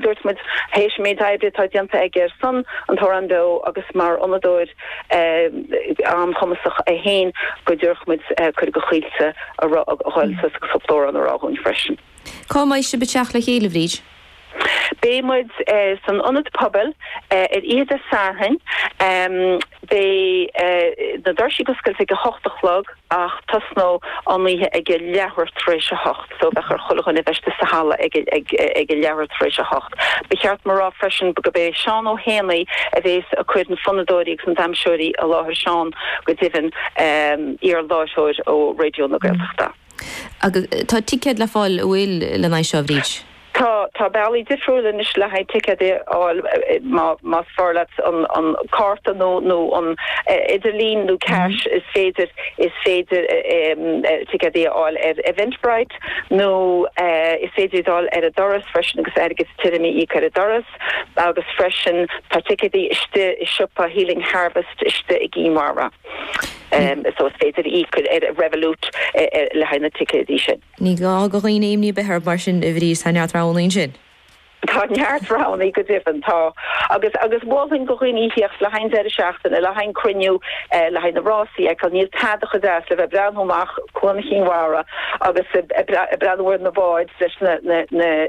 Dúirt muid, th'éis an méid oibre atá déanta aige ar son an tAmhrán Beo agus mar fhonnadóir an-chumasach é féin, go dtabharfadh muid cuireadh do Chaoilte a ghabháil suas agus cúpla amhrán a rá dhúinn freisin. Cá mbeidh sibh ag teacht le chéile, Bhríd? Beidh muid san Ionad Pobail ar oíche Dé Sathairn. Beidh na doirsí oscailte ag a hocht a chlog. Ach tosnóidh an oíche ag a leathuair tar éis a hocht, so ba cheart do chuile dhuine bheith istigh sa halla ag a leathuair tar éis a hocht. Ba cheart dom a rá freisin gurb é Seán Ó hÉanaí a bhéas ag cur na fonnadóirí agus na damhsóirí i láthair, Seán, go deimhin, iarláithreoir ó Raidió na Gaeltachta. Agus tá ticéid le fáil, a bhfuil, lena aghaidh seo, Bhríd? Tá tá bealaí difriúla anois le haghaidh ticéidí a fháil má más fearr leat an an cárta nó nó an t-idirlíon nó cash is féidir is féidir ticéidí a fháil ar Eventbrite nó is féidir iad a fháil ar an doras freisin agus airgead tirim a íoc ar an doras agus freisin tá ticéidí istigh i siopa Healing Harvest istigh i gCinn Mhara so is féidir íoc ar Revolut le haghaidh na ticéidí sin. Ní gá do dhaoine imní a bheith orthu mar sin a Bhríd, tá neart roghanna ansin. Tá neart roghanna go deimhin, tá. Agus agus mholfainn do dhaoine theacht le haghaidh an deireadh seachtaine, le haghaidh an cruinniú, le haghaidh na rásaí a fheiceáil, níl tada chomh deas le bheith ag breathnú amach Cuan Chinn Mhara agus ag breathnú ar na báid leis na na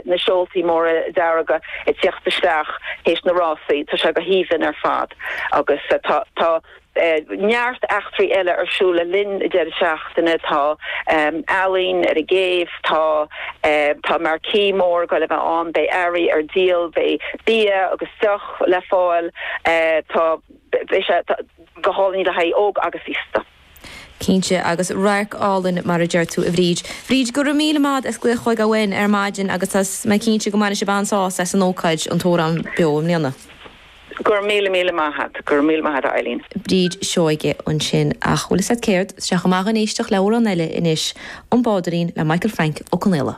na seoltaí móra dearga ag tíocht isteach th'éis na rásaí, tá sé go haoibhinn ar fad. Agus tá tá. Beidh neart eachtraí eile ar siúl le linn na deireadh seachtaine, tá ealaín ar an gcéibh, tá tá marquee mór goil a bheith ann, beidh earraí ar díol, beidh bia agus deoch le fáil, tá beidh sé go hálainn le haghaidh óg agus aosta. Cinnte, agus radharc álainn mar a deir tú, a Bhríd. Bhríd, go raibh míle maith a't as glaoch chugainn ar maidin agus tá mé cinnte go mbainfidh sibh an-sásamh as an ócáid, An tAmhrán Beo i mbliana. Go raibh míle míle maith a't. Go raibh míle maith a't a Eileen. Bríd Seoige ansin, ach bhfuil fhios a't céard? Éistfidh muid ag éisteacht le amhrán eile anois, An Bádairín le Michael Frank Ó Confhaola.